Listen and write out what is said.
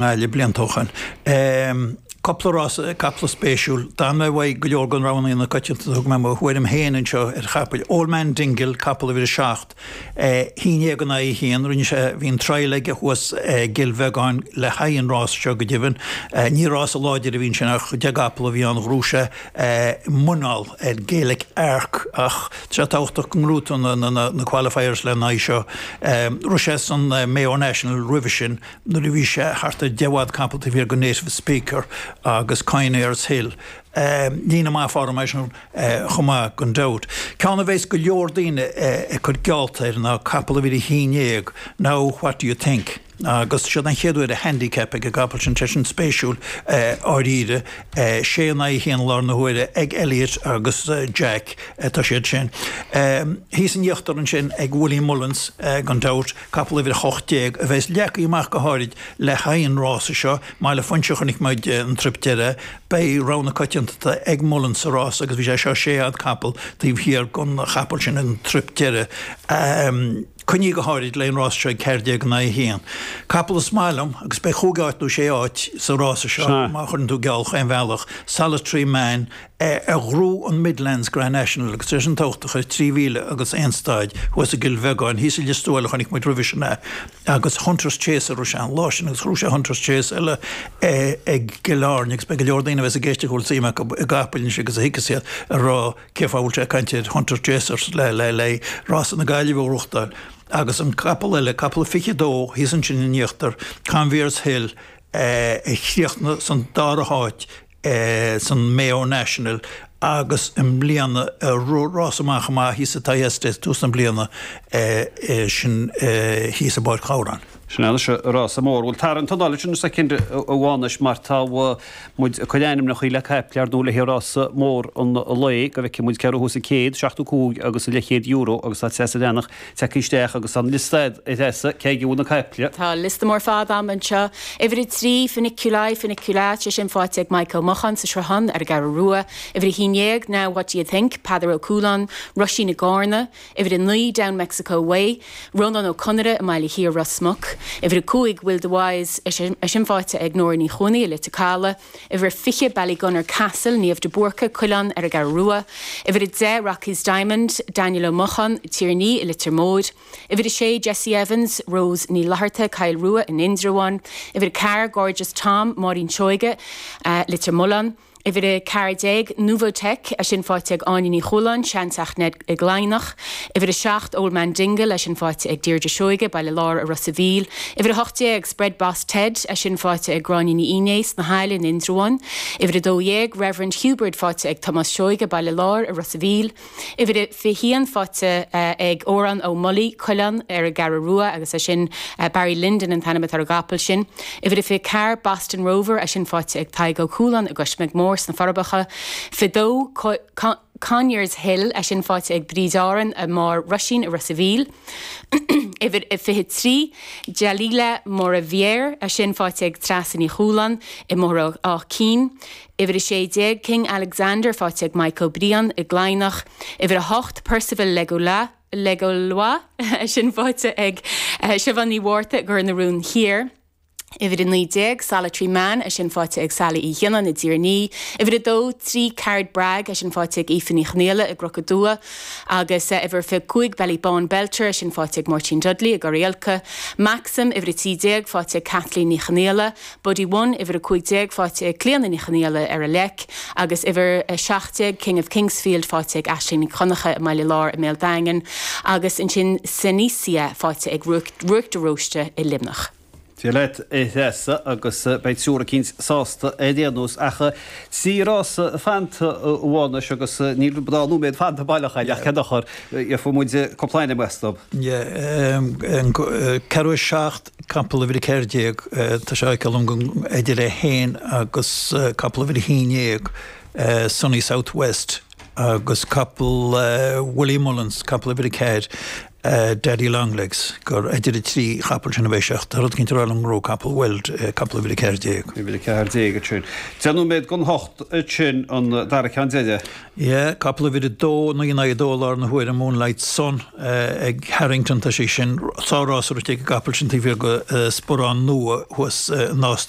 nGaillimh bliain toghcháin. Cúpla rás capall spéisiúil. D'fhan mé uaidh go leor de rogha na coitianta, thug mé mo thuairim féin anseo ar chapaill. Old Man Dingle, capall uimhir a seacht, sé déag in aghaidh a haon, rinne sé, bhí an trial aige thuas i gCill Bheagáin le haghaidh an rása seo go deimhin. Ní rása láidir a bhí ansin ach deich gcapall a bhí ann, ghnóthaigh sé muineál ar Gaelic Arc ach tá sé tábhachtach go ngnóthaítear na qualifiers lena aghaidh seo. Rith sé san Mayo National roimhe sin. nuair a bhí sé thart ar 10 bhfad capall taobh thiar den Native Speaker agus Conyers Hill. Líne maith form ansin chomh maith gan dabht. Ceann a bheas go leor daoine ag cur geallta air ná capall uimhir a haon dhéag Now What Do You Think? Agus sé an chéad uair i handicap ag an gcapall sin tá sin spéisiúil dháiríre. Sé in aghaidh a haon i láthair na huaire ag Elliott agus Jack atá sé sin. Thíos in íochtar ansin ag Willie Mullins gan dabht. Capall uimhir 18 a bheas leagtha amach go háirid le haghaidh an rása seo, mar le Foinse a chonaic muid an trip deireadh, beidh rogha na coitianta ag Mullen sa rása agus bhí sé seo sé fhad capall taobh thiar den chapall sin an trip deireadh. Coinnithe go háirid le an rása seo ag ceathair déag in aghaidh a haon. Capall is maith liom agus beidh chúig áit nó sé áit sa rása seo má chuireann tú geall chaon bhealach, Solitary Man, a ghnóthaigh an Midlands Grand National agus leis an tocht a chuir trí mhíle agus aon staid thuas i gCill Bheagáin, thíos i Lios Tuathail a chonaic muid roimhe sin é, agus Hunter's Chase a raibh sé an lá sin, agus chroch sé Hunter's Chase eile i gCill Airne, agus beidh go leor daoine a bheas ag éisteacht a bhfuil suim acu i gcapaill anois agus a thuigfeas iad ag rá cén fáth a bhfuil sé ag caint ar Hunter's Chasers le haghaidh rása na Gaillimhe a ghnóthachtáil, agus an capall eile, capall a 22, thíos ansin in íochtar Conyers Hill a chríochnaigh san dara háit i. san Mayo National agus i mbliana i rás an-mhaith an-mhaith thíos sa Thyestes tús na bliana sin thíos i bPáirc Ghabhráin. Sin anois an rása mór. Bhuel, tarraing t'anáil ansin soicind amháin anois mar tá muid ag cur ainmneacha le caiple ar ndóigh le haghaidh rása mór an lae go bhfeicfidh muid cé a ghnóthós an céad seachtú cúig agus an leithchéad euro agus tá tréas a leanfadh. Tíocht isteach agus tá an liosta ar threasadh, cé aige a bhfuil na caiple? Tá liosta mór fada ann anseo. Uimhir a trí, Funiculi Funicula, eisean faighte ag Maidhc Ó Mocháin sa Sruthán ar an gCeathrú Rua. Uimhir a haon dhéag, Now what do you think? Peadar Ó Cúláin, Roisín i gCarna. Uimhir a naoi, Down Mexico Way. Rónán Ó Conaire i mBaile Thiar, Ros Muc. Uimhir a cúig, Will the Wise, eisean faighte ag Nóra Ní Chuanaigh i Leitir Calaidh. Uimhir 20 Ballygunner Castle, Niamh de Búrca, Cuilleán ar an gCeathrú Rua, Uimhir 10 Rocky's Diamond, Daniel Ó Mocháin, Tír an Fhia, Leitir Móir, Uimhir 6 Jesse Evans, Rose Ní Fhlatharta, Coill Rua in Indreabhán, Uimhir 4 Gorgeous Tom, Máirín Seoige, Leitir Mealláin, Uimhir 14 Nouvotic, Eisean faighte ag Áine Ní Chualáin, Seanteach Ned i gCladhnach, Uimhir 7 Old Man Dingle, Eisean faighte ag Deirdre Seoige, Baile Láir i Ros a' Mhíl, Uimhir 18. Spread Boss Ted, é sin faighte ag Gráinne Ní Fhínné sna hAille in Indreabhán, uimhir 12, Reverend Hubert faighte ag Tomás Seoighe, Baile Láir, i Ros a' Mhíl, uimhir 21, faighte ag Odhrán Ó Mullaigh, Cuilleán, ar an gCeathrú Rua, agus é sin Barry Lyndon an t-ainm atá ar an gcapall sin, uimhir 24, Boston Rover, é sin faighte ag Tadhg Ó Cualáin i gCoismeig Mór sna Forbacha, 22, Conyers Hill, é sin faighte ag Bríd Árann i mBarr Roisín i Ros a' Mhíl, uimhir a 23, Delilah Maureviere, é sin faighte ag Treasa Ní Chualáin i mBóthar Áth Cinn, uimhir 16, King Alexander faighte ag Maidhc Ó Briain i gCladhnach, uimhir 8, Perceval Legallois, é sin faighte ag Siubhán Ní Mhárta i gCor na Rón Thiar. Uimhir 19, Solitary Man, é sin faighte ag Sally Uí Ghionnáin i dTír an Fhia. Uimhir 2, Three Card Brag, é sin faighte ag Aoife Ní Chonaola i gCnoc Aduaidh agus uimhir 25, Ballybawn Belter, é sin faighte ag Máirtín Dudley i gCorr Aolchloich. Maxxum, Uimhir 13, faighte ag Kathleen Ní Chonaola. Buddy One, Uimhir 15, faighte ag Clíodhna Ní Chonaola ar an Leic agus uimhir 17, King of Kingsfield, faighte ag Aisling Nic Dhonncha i mBaile Láir i mBéal Daingin agus ansin Senecia, faighte ag Ruth de Róiste i Luimneach. Dia leat a Threasa agus beidh triúr eicínt sásta ar aon nós ach trí rása fanta amháin anois agus níl dhá nóiméad fanta baileach aige ach cén dochar, gheobhaidh muid cúpla ainm uait is dóigh. Ceathrú a seacht, capall uimhir a ceathair déag, tá sé á fheiceáil liom gur idir é féin agus capall uimhir a haon déag, Sunny South West, agus capall Willie Mullins, capall uimhir a ceathair, Daddy Long Legs, gur idir an trí chapall sin a bheidh sé, ach tá rud eicínt ag rá liom go raibh capall Weld capall uimhir a ceathair déag. Uimhir a ceathair déag ansin. Deich nóiméad don hocht ansin an dara ceann deiridh. Yeh, capall uimhir a dó, naoi in aghaidh a dó i láthair na huaire, Moonlight Sun ag Harrington, tá sí sin, sár-rás rite ag an gcapall sin taobh thiar de Sparán Nua thuas i Nás na.